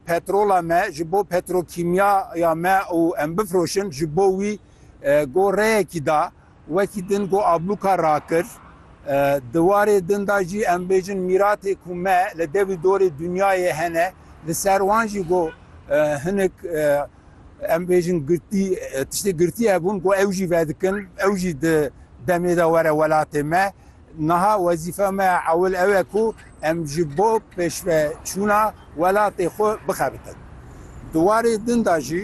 Petrola me ji bo petrokîmya ya me û em bifroşin ji bo wî go reyekî da. Wekî din go ablûka rakir. Di warê din da jî em bêjin mîratê ku me li dewî dorê dinyayê hene li ser wan jî go hinik em bêjin girtî tiştê girtî hebûn go ew jî vedikin ew jî di demê de were welatê me. Niha wezîfa me ya ewil ew e ku em ji bo pêşveçûna welatê xwe bixebitin. Di warê din de jî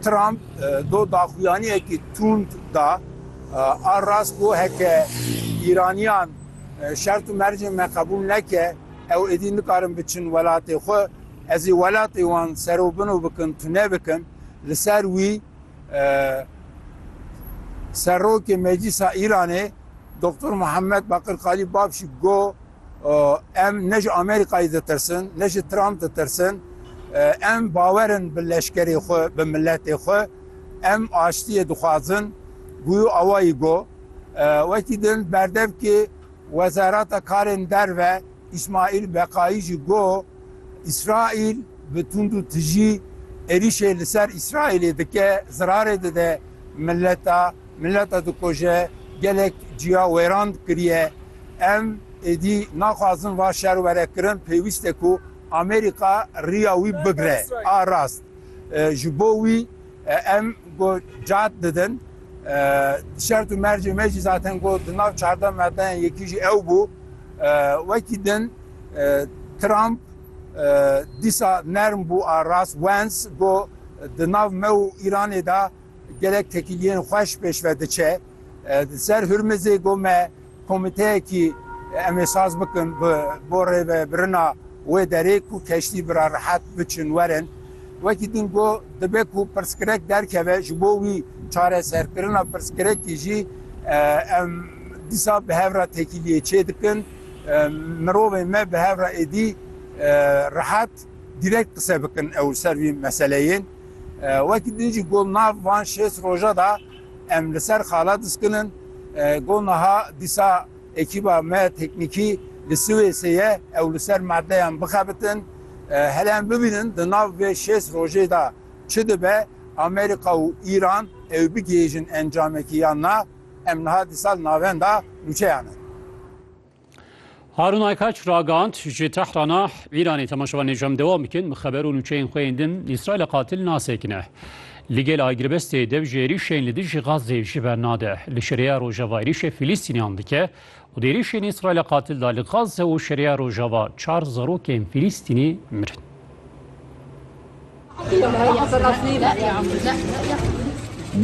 Trump do daxuyaniyekî tund da, A rast bû heke Îraniyan şert û mercên me qebûl neke, ew êdî nikarin biçin welatê xwe. Ez ê welatê wan serobino bikin, tune bikin. Li ser wî Serokê Meclîsa Îranê Doktor Muhammed Bakir Kalî Babşî go em ne ji Amerîkayê ditirsin, ne ji Trump ditirsin, em bawerin bi leşkerê xwe, bi miletê xwe, em aştiyê dixwazin, guyo awayî go. Wekî din berdevkê Wezareta Karên Derve Îsmaîl Beqayî jî got, Îsraîl bi tund û tijî êrîşê li ser Îsraîlê dike, zirarê dide mileta, mileta dikoje, gelek ciya wêran kiriye. Em êdî naxwazin va şer were kirin, pêwîst e ku Amerîka riya wî bigire. A rast ji bo wî. Em ku cad didin, şert û mercê me jî zaten ku di nav çardeh madeyên yekî jî ew bû. Wekî din Trump dîsa nerm bû a rast Wens ku di nav me û Îranê de gelek tekîliyên xweş pêşve diçe. Li ser Hurmizê ku me Komiteyekî em ê saz bikin bi bo rêvebirina wê derê ku keştî bi re rehet biçin werin. Wekî din got, dibe ku pirsgirêk derkeve ji bo wî çareserkirina pirsgirêkî jî em dîsa bi hev re têkiliyê çê dikin. Mirovên me bi hev re êdî rehet direkt qise bikin ew li ser vî meseleyên. Wekî din jî got, nav van şêst roja de, Em li ser xala diskin in. Got niha dîsa ekîba me teknîkî li Siwêsê ye, ew li ser madeyan bixebitin. Hele em bibînin di nav vê şêst rojê de çi dibe, Amerîka û Îran ew bigihêjin encamekî yan na. Em niha dîsa li navenda nûçeyan in. Harun Aykaç ragand ji Tehrana Îranê temaşevan nêcem dewam bikin bi xeber û nûçeyên xwe yên din Îsraîlê qatil nasekine. Li gel agirvestê dev ji êrîşên li dijî Gazê ji ber nade. Li şereya rojava êrîşê Fîlîstîniyan dike û di êrîşên Îsraîlê qatil de li Gaze û şereya rojava çar zarokên Fîlîstînî mirin.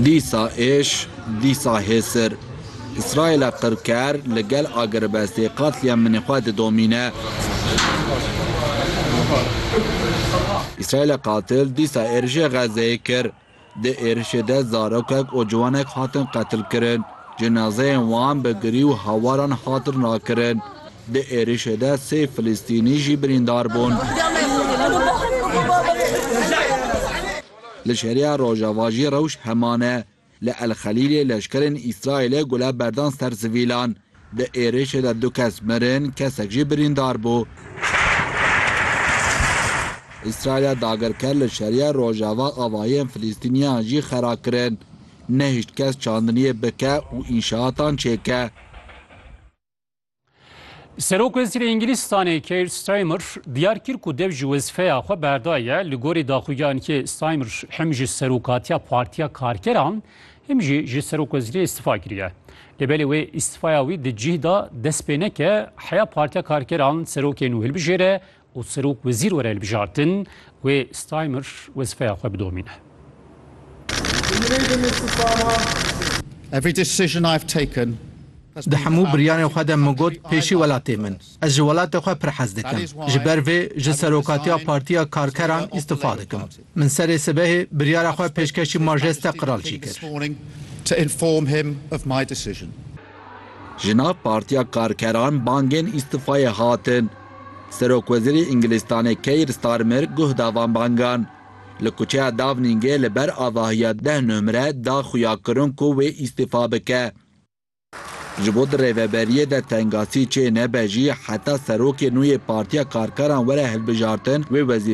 Dîsa êş, dîsa hêsir. Îsraîla qirker li gel agirbestê qatliam minê xwe didomîne. Îsraîla qatil dîsa êrîşê Xezzeyê kir. Di êrişê de zarokek û ciwanek hatin qetilkirin, cinazeyên wan bi girî û hawaran hatin rakirin. Di êrişê de sê Filistînî jî birîndar bûn. Li şerîya rojava jî rewş heman e. Li El Xelîlê leşkerên Îsraîlê gule berdan ser sivîlan. Di êrişê de du kes mirin, kesek jî birîndar bû. Îsraîlê dagirker li şerîya rojava avahiyên Filîstîniyan jî xera kirin. Nehîşt kes çandiniyê bike û înşaatan çêke. Serok-Wezîrê Îngilîzstanê Keir Starmer diyar kir ku dev ji wezîfeya xwe berdaye. Li gorî daxuyanekê Starmer him ji Serokatiya Partiya Karkeran Him jî ji serokwezîriyê îstifa kiriye. Lê belê wê îstifaya wî di cih de dest pê neke heya Partiya Karkeran serokê nû hilbijêre û serok wezîr were hilbijartin, wê Steimer wezîfeya xwe bidomîne. Di hemû biryarên xwe de min got pêşî welatê min. Ez ji welatê xwe pir hez dikim. Ji ber vê ji serokatiya Partiya Karkeran îstifa dikim. Min serê sibehê biryara xwe pêşkeşî Majeste Qiralcî kir. Ji nav Partiya Karkeran bangên îstifayê hatin. Serokwezîrê Îngilîstanê Keir Starmer guh da van bangan. Li kuçeya Dawnîngê li ber avahiya deh nomre da xuya kirin ku wê îstifa bike. Ji bo di rêveberiyê de tengasî çê nebe jî heta serokê nû yê Partiya Karkeran were hilbijartin wê wezîfeyê